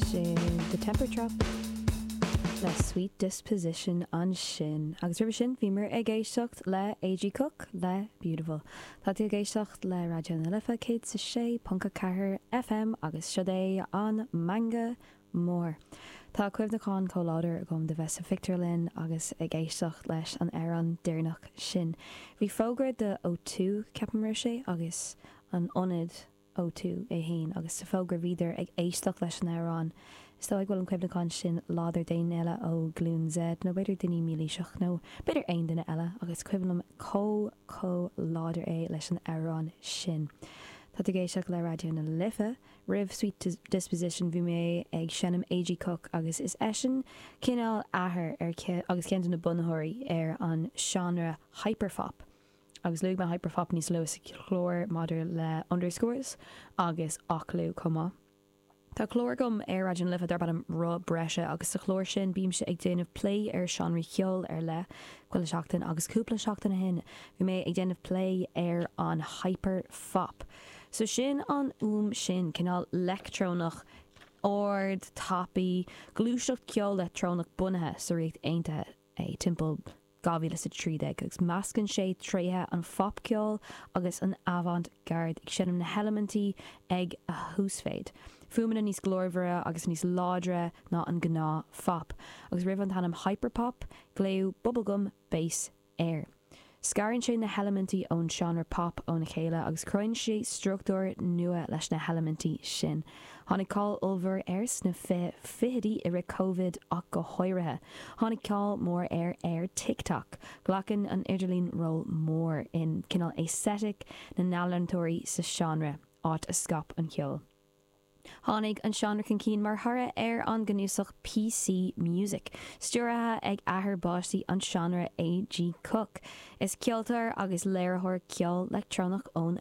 Sin The Temper Trap le Sweet Disposition ansin. Agus roimhe sin bhíomar ag éisteacht le A.G. Cook le Beautiful. Tá tú ag éisteacht le Raidió na Life 106.4 FM agus seo é an Meangadh Mór. Tá cuimhneachán chomh láidir agam de bheith sa phictiúrlann agus ag éisteacht leis an amhrán deireanach sin. Bhí fógra de O2, ceapaim sé agus an ionad. O2, é fhéin agus sa bhfógra bhíodar ag éisteacht leis an amhrán. Is dóigh go bhfuil an cuimhneachán sin láidir d'aon duine eile ó Ghlúin Z, nó b'fhéidir duine Mílaoiseach, nó b'fhéidir aon duine eile, ach is cuimhin liom chomh, chomh láidir é leis an amhrán sin. Tá tú ag éisteacht le Raidió na Life. Roimh Sweet Disposition bhí mé ag seinm A.G. Cook agus is eisean cineál athair ar agus ceann de na bunaitheoirí ar an seánra Hyperpop. Agus luaigh mé Hyperpop níos luath sa chlár maidir le underscores agus Oklou chomh maith. Tá clár agam ar Raidió na Life darb ainm Roth Breise agus sa chlár sin bímse ag déanamh plé ar sheánraí ceoil ar leith chuile sheachtain agus cúpla seachtain ó shin bhí mé ag déanamh plé ar an hyperpop. So sin an fhuaim sin, cineál leictreonach ard, tapaidh, gluaiseacht ceol leictreonach bunaithe sa Ríocht Aontaithe. é, timpeall 2013, agus meascann sé tréithe an phopcheoil agus an avant-garde, ag seinm na heilimintí ag a huasmhéid, fuaimeanna níos glórmhaire agus níos láidre ná an gnáth-phop, agus roimh an ainm hyperpop, glaodh bubblegum bass air. Scarann sé na heilimintí ón seánra pop óna chéile agus cruthaíonn sé struchtúr nua leis na heilimintí sin. Tháinig cáil ollmhór air sna fiche fichidí, i rith Covid ach go háirithe. Tháinig cáil mhór air ar TikTok. Glacann an idirlíon ról mór in cineál aesthetic na n-ealaíontóirí sa seánra, áit a scaip an ceol. Tháinig an seánra chun cinn mar thoradh ar an gcnuasach PC Music, stiúraithe ag athair báistí an seánra A.G. Cook. Is ceoltóir agus léiritheoir ceoil leictreonach ón.